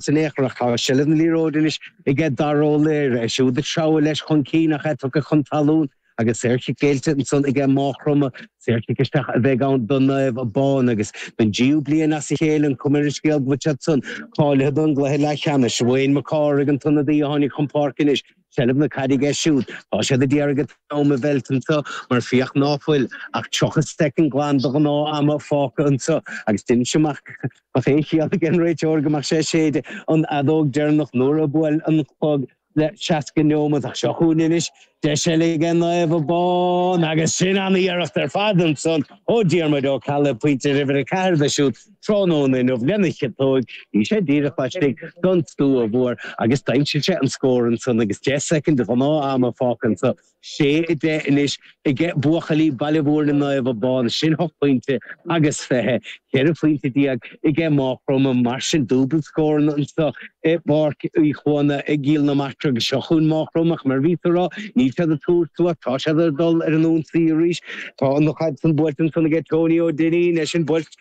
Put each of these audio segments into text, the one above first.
San Fhiachrach tá seilbh na liathróide anois aige Dara Ó Laoire, é siúd ag treabhadh leis chun cinn ach é tugtha chun talún agus saorchic géillte ansan aige Mághchromdha. Saorchic isteach a bheidh ann do Naomh Abán agus don dtríú bliain as a chéile an cuma ar an scéal go bhfuil siad san cáilithe don gcluiche leathcheannais. Wayne Mac Cárthaigh an t-ionadaí a tháinig chun páirce anois. seilbh na caide aige siúd. Tá siad a d'iarraidh an t-am a mheilt anso mar féach ná fuil ach 30 soicind glan de ghnáth ama fágtha anso agus deinimse amach dá mbeadh aon chiall aige an réiteoir go mbeadh sé ag séideadh an fheadóg deireanach nuair a bhuail an clog le 60 neomat ach seo chugainn anois deis eile aige Naomh Abán agus sin an iarracht ar fad ansan ó Diarmuid Ó Ceallaigh, pointe uimhir a 4 dó siúd. Tráthnóna inniu lena chiotóg, bhí sé díreach laistigh den stua mhór agus d'aimsigh sé an scór ansan agus deich soicind de ghnáth-ama fágtha anso. Sé a deich anois aige buachaillí Baile Mhúirne Naomh Abán, sin hocht bpointe agus fiche, ceithre phointe déag aige Máigh Chromtha. Mar sin, dúbailt scóranna anso i bPáirc Uí Chuana i gCill na Martra agus seo chugainn Máigh Chromtha ach mar a bhíos a rá, níl siad ag tabhairt suas, tá siad ag dul ar an ionsaí arís. Tá an chaid san buailte ansan aige Tony Ó Duinnín, é sin buailte.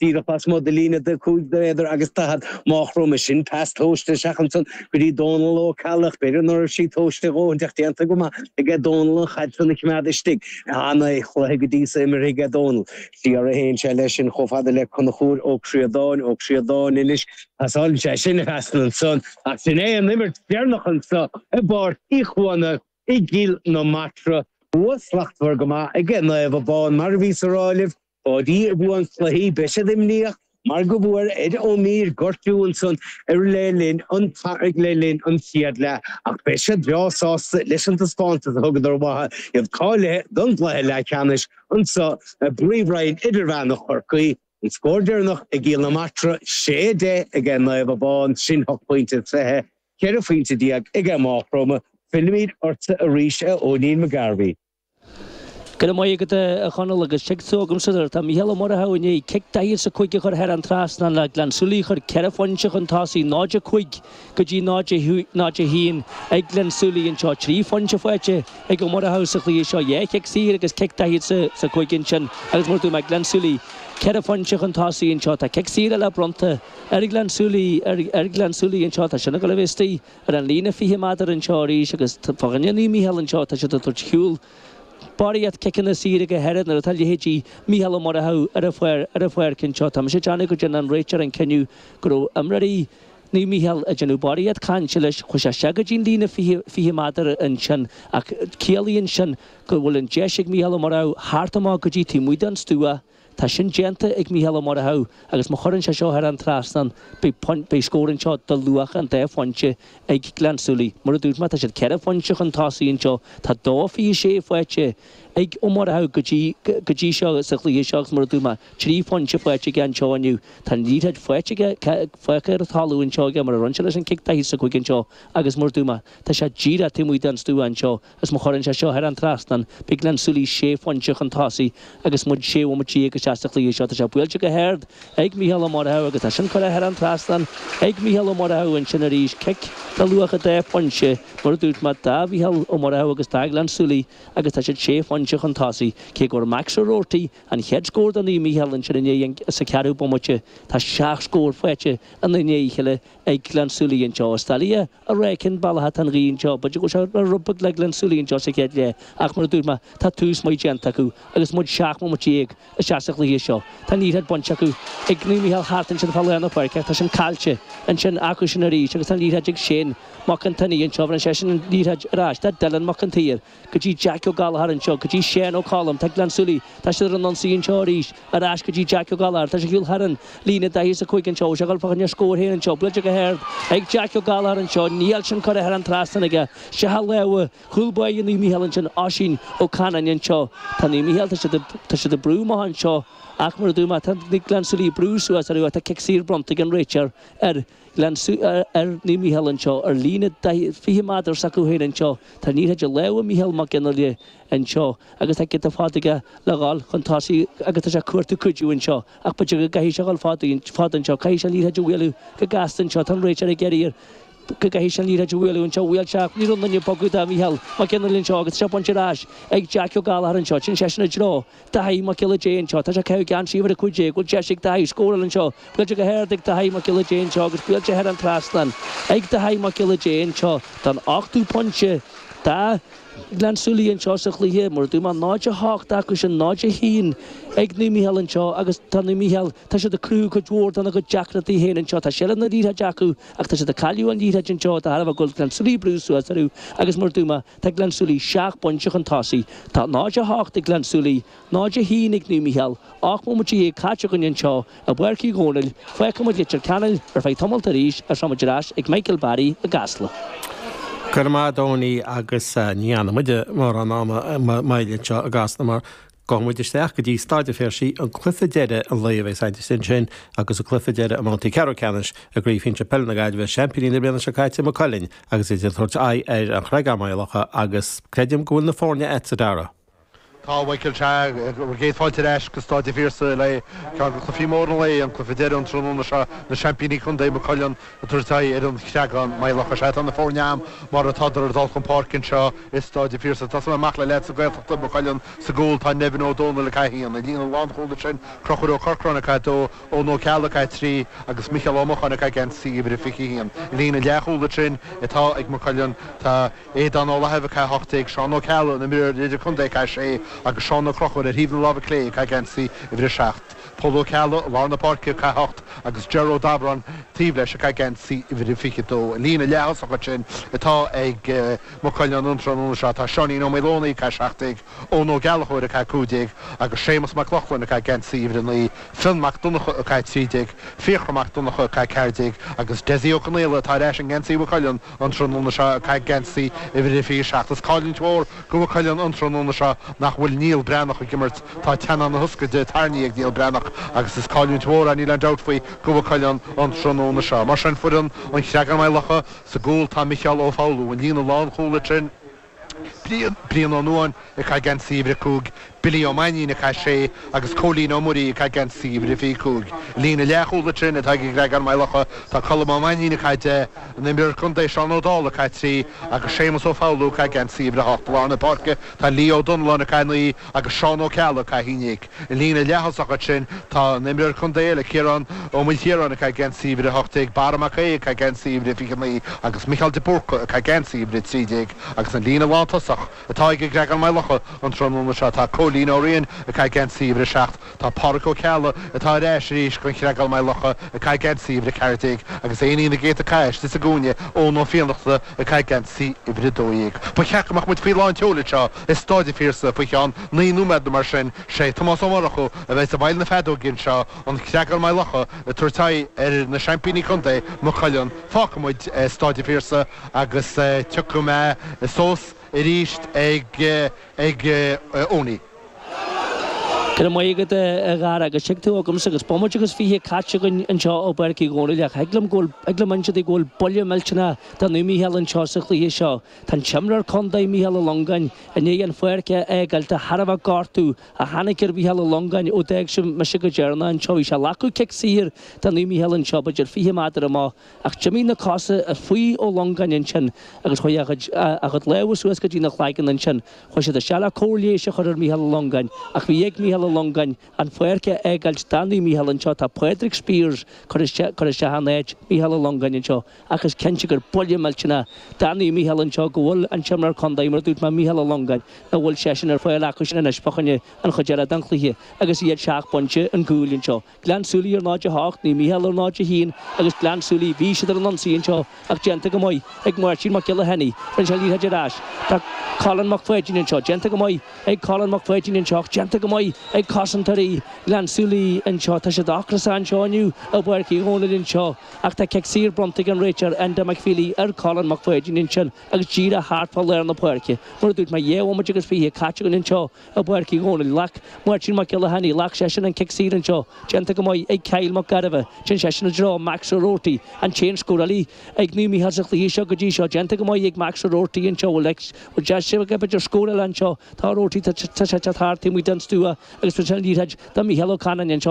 díreach lasmuigh den líne 45 méadar agus Mághchromdha, sin pas tomhaiste isteach ansan go dtí Dónal Ó Ceallaigh, b'fhéidir ná raibh sé tomhaiste a dhóthain ach déanta go maith aige Dónal an chaid san a choimeád istigh. Ana chluiche go dtí so imeartha aige Dónal. Siar a théann sé leis sin chomh fada le Conchúir Ó Críodáin, Ó Críodáin anois, pasáileann sé sin a phas ansan ach sin é an imirt deireanach anso i bPáirc Uí Chuana i gCill na Martra. Bua slachtmhar go maith aige Naomh Abán mar a bhíos a rá libh. Páidí i bhfuath an chluichí, beidh siad imníoch mar go bhfuair Ed Ó Mír gortú ansan ar le linn an le linn an chéad leath ach beidh siad breá sásta leis an taispeántas a thugadar uatha, iad cáilithe don gcluiche leathcheannais anso i bPríomhroinn Idirmheánach Chorcaí. An scór deireanach i gCill na Martra, sé a deich aige Naomh Abán, sin hocht bpointe is fiche, ceithre phointe déag aige Mághchromdha, fillimid ortsa arís a Eoinín McGarvey. Go raibh maith agat, a Chonaill, agus tig tú chugamsa nuair atá Mícheál Ó Murchú i ndiaidh cic daichead is a cúig a chur thar an trasnán, Gleann Súilí a chur ceithre phointe chun tosaigh, 0, 5 go dtí 0, 1, ag Gleann Súilí anseo. Trí phointe faighte ag Ó Murchú sa chluiche seo, dhá chic saor agus cic daichead is a cúig ansin agus mar a dúirt mé, Gleann Súilí ceithre phointe chun tosaigh anseo. Tá cic saor eile bronnta ar Ghleann Súilí anseo, tá sin ag gabháil isteach. Ar an líne 20 meadar anseo arís agus fá choinne Naomh Mícheál anseo tá siad ag tabhairt ar shiúl barraíocht ciceanna saoire go háirid nuair atá leithéidí Mícheál Ó Murchú ar an pháir ar an pháirc anseo. Tá mise ag déanamh go dtearn an réiteoir an cinneadh go raibh imreoirí Naomh Mícheál ag déanamh barraíocht cainte leis chuir sé isteach go dtí'n líne 20 meadar ansin ach ciallaíonn sin go bhfuil an deis ag Mícheál Ó Murchú theacht amach go dtí taobh amuigh den stua Tá sin déanta ag Mícheál Ó Murchú agus má chuireann sé seo thar an trasnán beidh scór anseo de luach an dá phointe ag Gleann tSúilí. Mar a dúirt mé, tá siad ceithre phointe chun tosaigh anseo. Tá dó fiche sé faighte ag Ó Murchú go dtí seo sa chluiche seo agus mar a dúirt mé, trí phointe faighte aige anseo inniu. Tá an liathróid fágtha ar an talamh anseo aige mar a rinne sé leis an chic daichead is a cúig anseo agus mar a dúirt mé, tá sé díreach taobh amuigh den stua anseo. Is má chuireann sé seo thar an trasnán, beidh Gleann tSúilí sé phointe chun tosaigh agus muid sé bhomaite dhéag isteach sa chluiche seo. Tá sé buailte go hard ag Micheál Ó Murchú agus tá sin curtha thar an trasnán ag Micheál Ó Murchú ansin arís. Cic de luach an dá phointe mar a dúirt mé do Mhicheál Ó Murchú agus do Ghleann tSúilí agus tá siad sé phointe chun tosaigh. Cé go bhfuair Max Ó Roarty an chéad scór do Naomh Micheál ansin ins an cheathrú bomaite, tá seacht scór faighte i ndiaidh a chéile ag Gleann tSúilí anseo. Is doiligh a rá cén bealach atá an ghaoth anseo. B'fhéidir go bhfuil sé rud beag le Gleann tSúilí anseo sa chéad leath ach mar a dúirt mé tá tús maith déanta acu agus muid seacht mbomaite déag isteach sa chluiche seo. Tá an liathróid bainte acu ag Naomh Micheál thart ansin fá lár na páirce ach tá sin caillte ansin acu ansin arís agus tá an liathróid ag Shane Mac an tSionnaigh anseo bheireann seisean an liathróid ar ais do Dylan Mac an tSaoir. go dtí Jeaic Ó Gallchóir anseo, go dtí Seán Ó Colm, tá Gleann tSúilí, tá siad ar an ionsaí anseo arís, ar ais go dtí Jeaic Ó Gallchóir, tá sé ag dul thar an líne daichead is a cúig anseo, bhfuil sé ag dul fá choinne a scór féin anseo, buailte go hard ag Jeaic Ó Gallchóir anseo, níl sin curtha thar an trasnán aige, isteach i lámha chúl báire Naomh Micheál ansin, Oisín Ó Canainn anseo, tá Naomh Micheál, tá siad, tá siad ag brú amach anseo ach mar a dúirt mé, tá Gleann tSúilí ag brú suas orthu ach tá cic saor bronnta ag an réiteoir ar Gleann, ar Naomh Mícheál anseo ar líne 20 méadar s'acu féin anseo. Tá an liathróid i lámha Mhícheál Mac Fhionnaile anseo agus tá giota fada aige le dhul chun tosaigh agus tá sé ag cuartú cuidiú anseo ach b'fhéidir go gcaithfidh sé dhul fada fada anseo. Caithfidh sé an liathróid a bhualadh go gasta anseo. Tá an réiteoir ag iarraidh air go gcaithfidh sé an liathróid a bhualadh anseo. Bhuail sé ach ní raibh aon duine ag bogadh do Mhícheál Mac Fhionnaile anseo agus tá sé bainte ar ais ag Jeaic Ó Gallchóir anseo. Téann seisean i dtreo Daithí Mac Giolla Dé anseo. Tá sé ag caitheamh geansaí uimhir a cúig déag. Bhfuil deis ag Daithí scóráil anseo? Buailte go hard ag Daithí Mac Giolla Dé anseo agus buailte thar an trasnán ag Daithí Mac Giolla Dé anseo don ochtú pointe do Ghleann tSúilí anseo sa chluiche. Mar a dúirt mé 0 8 acu sin 0 1 ag Naomh Micheál anseo agus tá Naomh Micheál tá siad ag cruthú cuid mhór dona gcuid deacrachtaí féin anseo. Tá seilbh na liathróid acu ach tá siad ag cailleadh an liathróid anseo de thairbhe go bhfuil Gleann tSúilí ag brú suas orthu agus mar a dúirt mé Tá Gleann tSúilí seacht bpointe chun tosaigh. Tá 0-8 ag Gleann tSúilí, 0-1 ag Naomh Micheál. Ocht mbomaite déag caite againn anseo i bPáirc Uí Dhónaill. Fágfaimid Leitir Ceanainn ar feadh tamalt arís agus táimid ar ais ag Michael Barry i gCasla. Go raibh maith agat a Donie agus ní fhanfaimid mórán ama moille anseo i gCasla mar Gabhfaidh muid isteach go dtí Staid an Phiarsaigh, an cluiche deireadh an lae a bheas againn ansin agus an cluiche deireadh i mbabhtaí ceathrú ceannais i gCraobh Shinsir Peile na Gaillimhe, seaimpíní na bliana seo caite, Maigh Cuilinn, agus iad ag tabhairt aghaidh ar An Chreagán, Maigh Locha agus creidim go bhfuil na foirne a'tsa, a Dhara. Tá, a Mhichael, sea agus céad fáilte ar ais go Staid an Phiarsaigh le haghaidh ceann de chluichí móra an lae, an cluiche deireadh an tráthnóna seo, na seaimpíní contae, Maigh Cuilinn, Ag tabhairt aghaidh ar an Chreagán, Maigh Locha. Sea, tá na foirne a'am mar atádar ag dul chun páirce anseo i Stáid an Phiarsaigh. Ag tosú amach le leaids na Gaeltachta, Maigh Cuilinn, sa gcúl, tá Nevin Ó Dónaill ag caith aon i líne lánchúl ansin, Crochúr Ó Corcráin ag caith dó, Eoin Ó Ceallaigh ag caith trí agus Micheál Ó Mocháin ag caith geansaí uimhir a 21. I líne leathchúl ansin atá ag Maigh Cuilinn tá Aodán Ó Lathaimh ag caith 18, Seán Ó Ceallaigh, an imreoir idir-contae ag caith 6 agus Seán Ó Crochúir ar thaobh na láimhe clé ag caith geansaí uimhir a 7. Pól Ó Ceallaigh, lár na páirce, ag caith a hocht, agus Ger Ó Dabhráin taobh leis ag caith geansaí uimhir a 22. An líne leath-thosach ansin atá ag Maigh Cuilinn an tráthnóna seo, tá Seáinín Ó Maoldomhnaigh ag caith seacht déag, Eoin Ó Gallchóir ag caith cúig déag agus Séamus Mac Lochlainn ag caith geansaí uimhir a naoi, Fionn Mac Donnacha ag caith trí déag, Fiachra Mac Donnacha ag caith ceathair déag agus Dessie Ó Conaola atá ar ais i ngeansaí Mhaigh Cuilinn. An tráthnóna seo ag caith geansaí uimhir a 27 is cailliúint mhór go Mhaigh Cuilinn an tráthnóna seo nach bhfuil Niall Breathnach ag imirt. Tá teannán na hioscaide tairní ag Niall Breathnach agus is cailliúint mhór é, níl aon dabht faoi, go Mhaigh Cuilinn an tráthnóna seo. Mar sin foireann an Chreagáin-Maigh Locha sa gcúl, tá Micheál Ó Foghlú, an líne lánchúl ansin. Brian Ó Nuáin ag caith geansaí uimhir a cúig, Billy Ó Mainnín ag caith a sé agus Cóilín Ó Muirí ag caith geansaí uimhir a fiche cúig. I líne leathchúl ansin atá ag an gCreagán Maigh Locha tá Colm Ó Mainnín ag caith deich, an imreoir contae Seán Ó Dálaigh ag caith trí agus Séamus Ó Foghlú ag caith geansaí uimhir a hocht. I lár na páirce tá Leo Ó Dónalláin ag caith naoi, agus Seán Ó Ceallaigh, ag caith 11, an líne leath-thosach ansin. Tá an t-imreoir contae eile, Ciarán Ó Maoilchiaráin, ag caith geansaí uimhir 18, Barra Mac Aodha ag caith geansaí uimhir 29 agus Micheál de Búrca ag caith geansaí uimhir 13 agus an líne lántosach atá ag an gCreagán Maigh Locha an tráthnóna seo tá Cóilín Ó Riain ag caith geansaí uimhir 7. Tá Pádraig Ó Ceallaigh, atá ar ais arís gon Chreagán Maigh Locha, ag caith geansaí uimhir a ceathair déag agus éinín na gcéadta cas istigh sa gcúinne, Eoin Ó Fiannachta ag caith geansaí uimhir a dó dhéag. Ba cheart go mbeadh muid faoi lán tseoil anseo i Stáid an Phiarsaigh faoi cheann naoi nóiméad nó mar sin. Sé Tomás Ó Murchú a bheas i bhfeighil na feadóige anseo, an Creagán Maigh Locha ag tabhairt aghaidh ar na seaimpíní contae, Maigh Cuilinn. Fágfaidh muid Stáid an Phiarsaigh agus tiocfaidh muid suas arís ag ag Owenie. Go raibh maith agat, a Dhara, agus tig tú chugamsa agus bomaite agus fiche caite againn anseo i bPáirc Uí Dhónaill ach thig liom go bhfuil, thig liom inse duit go bhfuil buille millteanach do Naomh Micheál anseo sa chluiche seo. Tá an t-imreoir contae, Micheál Ó Longáin, i ndiaidh an pháirc a fhágáil de thairbhe gortú a tháinig ar Mhicheál Ó Longáin ó d'fhág sibh mise go deireanach anseo. Bhí sé ag glacadh cic saor do Naomh Micheál anseo, b'fhéidir fiche méadar amach. Ach d'imigh na cosa faoi Ó Longáin ansin agus chuaigh a chuid a chuid lámha suas go dtí na chloigeann ansin. Chuaigh siad isteach le cóir leighis a chur ar Mhícheál Ó Longáin ach bhí ag Mícheál Ó Longáin an pháirc a fhágáilt do Naomh Mícheál anseo tá Pádraig Spiers cur isteach cur isteach in áit Mhícheál Ó Longáin anseo ach is cinnte gur buille millteanach do Naomh Mícheál anseo go bhfuil an t-imreoir contae mar a dúirt mé Mícheál Ó Longáin nach bhfuil seisean ar fáil acusan anois fá choinne an chuid eile den chluiche agus iad seacht bpointe ar gcúl anseo. Gleann tSúilí ar 0-8, Naomh Mícheál ar 0-1 agus Gleann tSúilí. Bhí siad ar an ionsaí anseo ach déanta go maith ag Máirtín Mac Giolla Chainnigh. Bhain sé an liathróid ar ais. Tá Colin Mac Pháidín anseo. Déanta go maith ag Colin Mac Pháidín anseo ach déanta go maith ag cosantóirí Ghleann tSúilí anseo. Tá siad ocrasach anseo inniu i bPáirc Uí Dhónaill anseo ach tá cic saor bronnta ag an réiteoir Enda McFeely ar Colin Mac Pháidín ansin agus díreach thart fá lár na páirce. Mar a dúirt mé dhá bhomaite agus fiche caite againn anseo. I bPáirc Uí Dhónaill, ghlac Máirtín Mac Giolla Chainnigh, ghlac seisean an cic saor anseo, déanta go maith ag Kyle Mac Gairbheith, shín seisean i dtreo Max Ó Robhartaigh, an t-aon scórálaí ag Naomh Mícheál sa chluiche seo go dtí seo, déanta go maith ag Max Ó Robhartaigh anseo, bhfuil, bhfuil deis aige b'fhéidir scór eile anseo, tá Ó Robhartaigh, tá sé ag teacht thart taobh amuigh den stua agus bhuail sé an liathróid do Mhícheál Ó Canainn anseo,